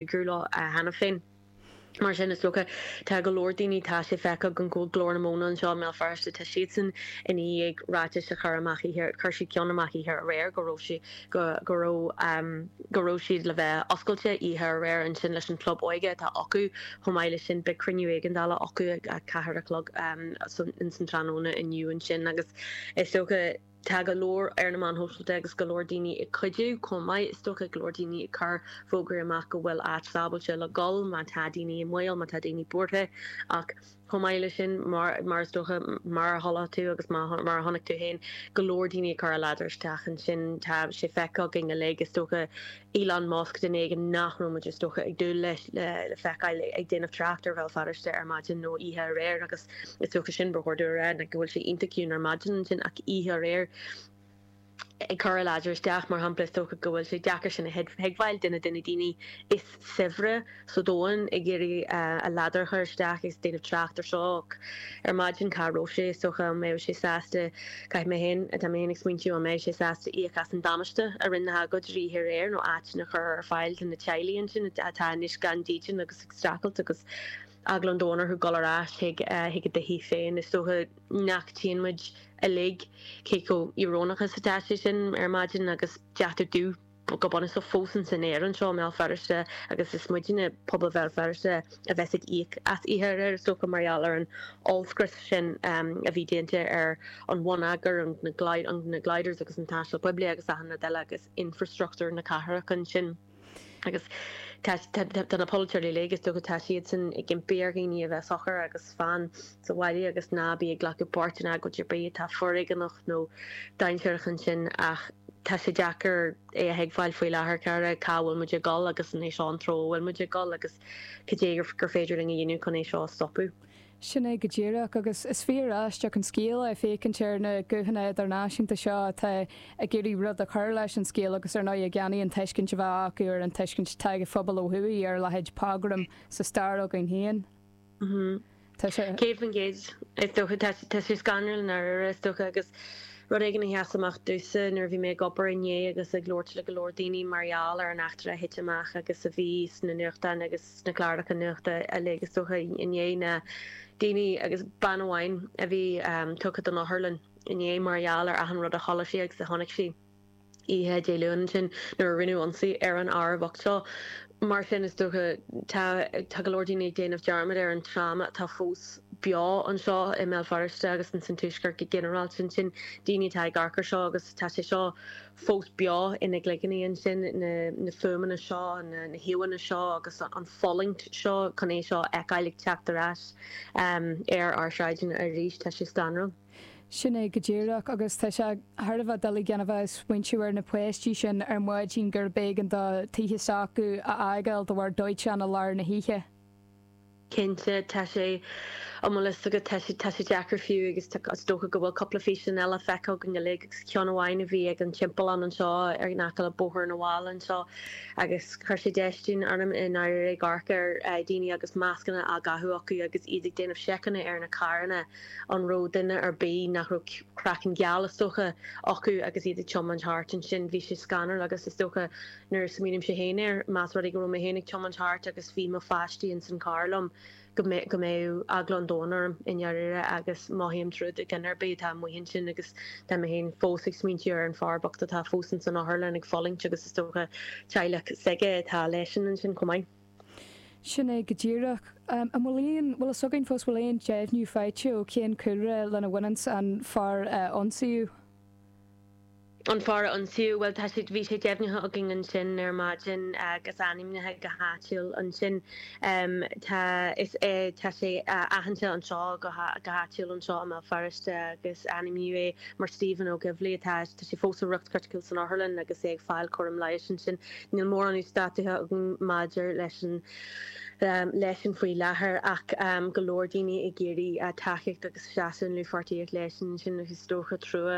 gcúl leo cheana féin. Mar sin, is dócha, tá go leor daoine, tá sé feicthe agam go bhfuil Glór na Móna anseo i mBéal Feirste, tá siadsan i ndiaidh ráitis a chur amach oíche, chuir siad ceann amach oíche aréir go raibh sé, go, go raibh, go raibh siad le bheith oscailte oíche aréir ansin leis an Chlub Óige atá acu, chomh maith leis sin beidh cruinniú éigeandála acu a ceathair a chlog, ins an tráthnóna inniu ansin agus is dócha, Tá go leor ar na meáin shóisialta agus go leor daoine ag cuidiú chomh maith. Is dócha go leor daoine ag cur fógraí amach go bhfuil áit sábháilte le dul má tá daoine i mbaol, má tá daoine buartha. Ach chomh maith leis sin, mar is dócha, mar a chuala tú agus mar a chonaic tú féin, go leor daoine ag cur a ladar isteach ansin. Tá sé feicthe againn uilig, is dócha. Elon Musk duine éigin nach raibh muid is dócha ag dúil leis le feiceáil ag déanamh tráchta ar Bhéal Feirste ar maidin nó oíche aréir agus is dócha sin ba chóir domh a rá go bhfuil sé iontach ciúin ar maidin ansin ach oíche aréir ag cur a ladar isteach mar shampla is dócha go bhfuil sé deacair sin a thuigbheáil duine de na daoine is saibhre sa domhan ag iarraidh a ladar a chur isteach ag déanamh tráchta ar seo ach ar maidin cá raibh sé? Is dócha an mbeadh sé sásta, caithfidh mé féin, tá mé féin ag smaointiú an mbeadh sé sásta íoc as an damáiste a rinne na hagóideoirí aréir nó áiteanna a chur ar fáil do na teaghlaigh ansin atá anois gan dídean agus ag streachailt agus eagla an domhain orthu dul ar ais chuig a dtithí féin. Is dócha nach dtuigeann muid uilig cé chomh íorónach is atá sé sin ar maidin agus deatach dubh. go bunúsach fós ins an aer anseo i mBéal Feirste agus is muidne, pobal Bhéal Feirste, a bheas ag íoc as oíche aréir, is dócha, mar gheall ar an ollscrios sin a bhí déanta ar an bhonneagar, na gliders agus an taisteal poiblí agus achan rud eile agus infreastruchtúr na cathrach ansin agus tá na polaiteoirí uilig, is dócha, tá siadsan ag impí ar dhaoine a bheith socair agus fan. sa bhaile agus ná bí ag glacadh páirt in agóid ar bith atá foréigeanach nó dainséarach ansin ach tá sé deacair é a thuigbheáil faoi láthair, cara, cá bhfuil muid ag dul agus an é seo an treo a bhfuil muid ag dul agus cad é gur féidir linn a dhéanamh chun é seo a stopadh? Sin é go díreach agus is fíor aisteach an scéal é féachaint ar na guthanna idirnáisiúnta seo atá ag iarraidh rud a chur leis an scéal agus ar ndóigh ní hionann an tuiscint a bheadh acu agus an tuiscint atá ag an phobal ó thuaidh ar leithéid pogram sa stair againn féin. Tá sé. Céad faoin gcéad. Is dócha. Tá sé, tá sé scanrúil i ndáiríre, is dócha, agus rud éigin a sheas amach domhsa nuair a bhí mé ag obair inné agus ag labhairt le go leor daoine mar gheall ar an eachtra a thit amach agus a bhí sna nuachtáin agus sna cláracha nuachta uilig, is dócha, inné ná daoine, agus bean amháin a bhí tugtha don otharlann inné mar gheall ar achan rud a chuala sí agus a chonaic sí. oíche Dé Luain ansin nuair a rinneadh ionsaí ar an fhear bhocht seo. Mar sin, is dócha, tá, tá go leor daoine ag déanamh dearmad ar an tráma atá fós beo anseo i mBéal Feirste agus in san Tuaisceart go ginearálta ansin, daoine atá ag amharc ar seo agus tá sé seo fós beo ina gcloigíní ansin, na, na fuaimeanna seo, na, na híomhánna seo agus an fhulaingt seo chun é seo a fheiceáil ag teacht ar ais ar ár sráideanna arís, tá sé scanrúil. Sin é go díreach, agus tá sé thar a bheith doiligh daofa, ag smaointiú ar na páistí sin ar maidin gurb éigean daofa teach s'acu a fhágáil de bharr dóiteán i lár na hoíche. Cinnte, tá sé, an bhfuil fhios agat, tá sé, tá sé deacair fiú agus tá, is dócha go bhfuil cúpla físeán eile feicthe againn uilig agus ceann amháin a bhí ag an timpeallán anseo ar in aice le Bóthar na bhFál anseo agus chuir sé déistín orm i ndáiríre, amharc ar dhaoine agus mascanna á gcaitheamh acu agus iad ag déanamh seiceanna ar na carranna. an raibh duine ar bith nach raibh craiceann geal, is dócha, acu agus iad ag tiomáint thart. Ansin bhí sé scanrúil agus is dócha, nuair a smaoinímse féin air, más rud é go raibh mé féin ag tiomáint thart agus bhí mo pháistí ins an charr liom, go, go mbeadh eagla an domhain orm, i ndáiríre, agus mothaím trua do dhuine ar bith atá amuigh ansin agus tá mé féin fós ag smaointiú ar an fear bocht atá fós ins an otharlann ag fulaingt agus is dócha teaghlach s'aige atá leisean ansin chomh maith. Sin é go díreach. An bhfuil aon, bhfuil fhios againn fós, bhfuil aon deimhniú faighte ó cén cúlra lena bhaineanns an fear a ionsaíodh? An fear a ionsaíodh, bhuel tá sé, bhí sé deimhnithe againn ansin ar maidin agus ainmnithe go háitiúil ansin. Tá, is é, tá sé aitheanta anseo go, go háitiúil anseo i mBéal Feirste agus ainmníodh é mar Stephen Ogilvie atá, tá sé fós i riocht criticiúil san otharlann agus é ag fáil cúram leighis ansin. Níl mórán uasdátaithe agam maidir leis an, leisean faoi láthair ach go leor daoine ag iarraidh tacaíocht agus seasamh i ndlúthpháirtíocht leis ansin agus is dócha trua,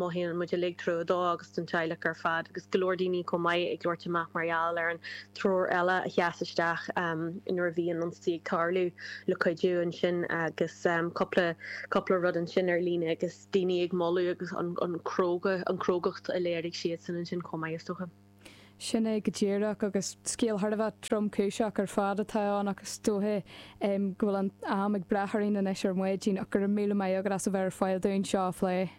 mothaíonn muid uilig trua dó agus don teaghlach ar fad agus go leor daoine chomh maith ag labhairt amach mar gheall ar an triúr eile a sheas isteach nuair a bhí an ionsaí ag tarlú le cuidiú ansin agus cúpla cúpla rud ansin ar líne agus daoine ag moladh agus an cróga, an crógacht a léirigh siadsan ansin chomh maith is dócha. Sin é go díreach agus scéal thar a bheith tromchúiseach ar fad atá ann ach is dóiche go bhfuil an am ag breith orainn anois ar maidin ach go raibh míle maith agat as a bheith ar fáil dúinn seo a phlé.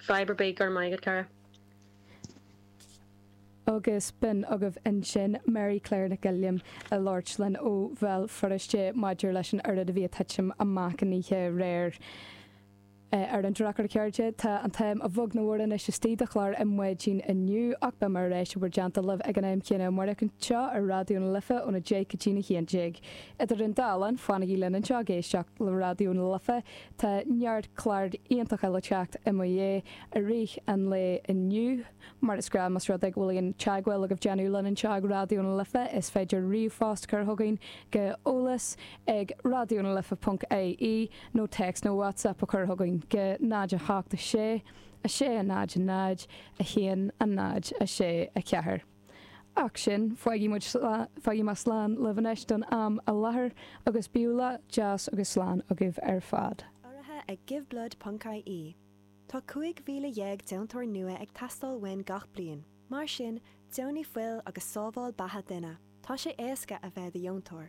Fadhb ar bith, go raibh maith agat, cara. Agus b'in agaibh ansin Mary Claire Nic Giolláin a labhairt linn ó Bhéal Feirste maidir leis an oiread a bhí ag titim amach ann oíche aréir. ar an drochuair, a chairde. Tá an t-am a bheag nó a mhór anois istigh do chlár na maidine inniu, ach beidh mé ar ais in bhur dteannta libh ag an am céanna amáireach anseo ar Raidió na Life óna deich go dtí a haon déag. Idir an dá linn, fanaigí linn anseo ag éisteacht le Raidió na Life, tá neart clár iontacha le teacht i mo dhiaidh i rith an lae inniu. Mar is gnáth, más rud é go bhfuil aon teagmháil agaibh déanamh linn anseo ag Raidió na Life, is féidir ríomhphost cur chugainn go eolas ag Raidió na Life ponc IE nó text nó WhatsApp a chur chugainn go 0 8 6 6 0 0 1 0 6 4 Ach sin fágfaidh muid fágfaidh mé slán libh anois don am i láthair agus bíodh lá deas agus slán agaibh ar fad. Urraithe ag Giveblood ponc IE Tá 15,000 deontóir nua ag teastáil uainn gach bliain. Mar sin, deonaigh fuil agus sábháil beatha duine. Tá sé éasca a bheith i do dheontóir.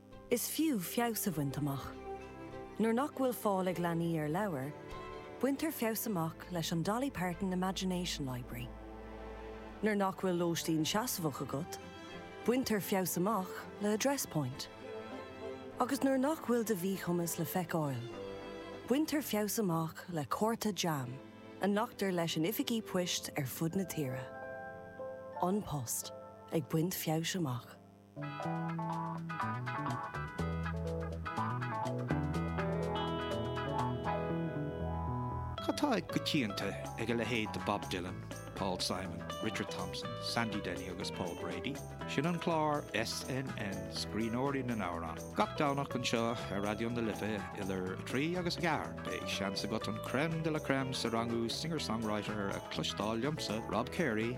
Is fiú feabhas a bhaint amach. Nuair nach bhfuil fáil ag leanaí ar leabhair, baintear feabhas amach leis an Dolly Parton Imagination Library. Nuair nach bhfuil lóistín seasmhach agat, baintear feabhas amach le Address Point. Agus nuair nach bhfuil do mhíchumas le feiceáil, baintear feabhas amach le cárta JAM a nglactar leis in oifigí poist ar fud na tíre. An Post ag baint feabhais amach. Cad tá i gcoitianta ag a leithéid de Bob Dylan, Paul Simon, Richard Thompson, Sandy Denny agus Paul Brady? Sin an clár SNN Scríbhneoirí na nAmhrán. Gach Domhnach anseo ar Raidió na Life idir 3 agus 4 beidh seans agat an crème de la crème sa rangú Singer Songwriter a chloisteáil liomsa, Rob Carey,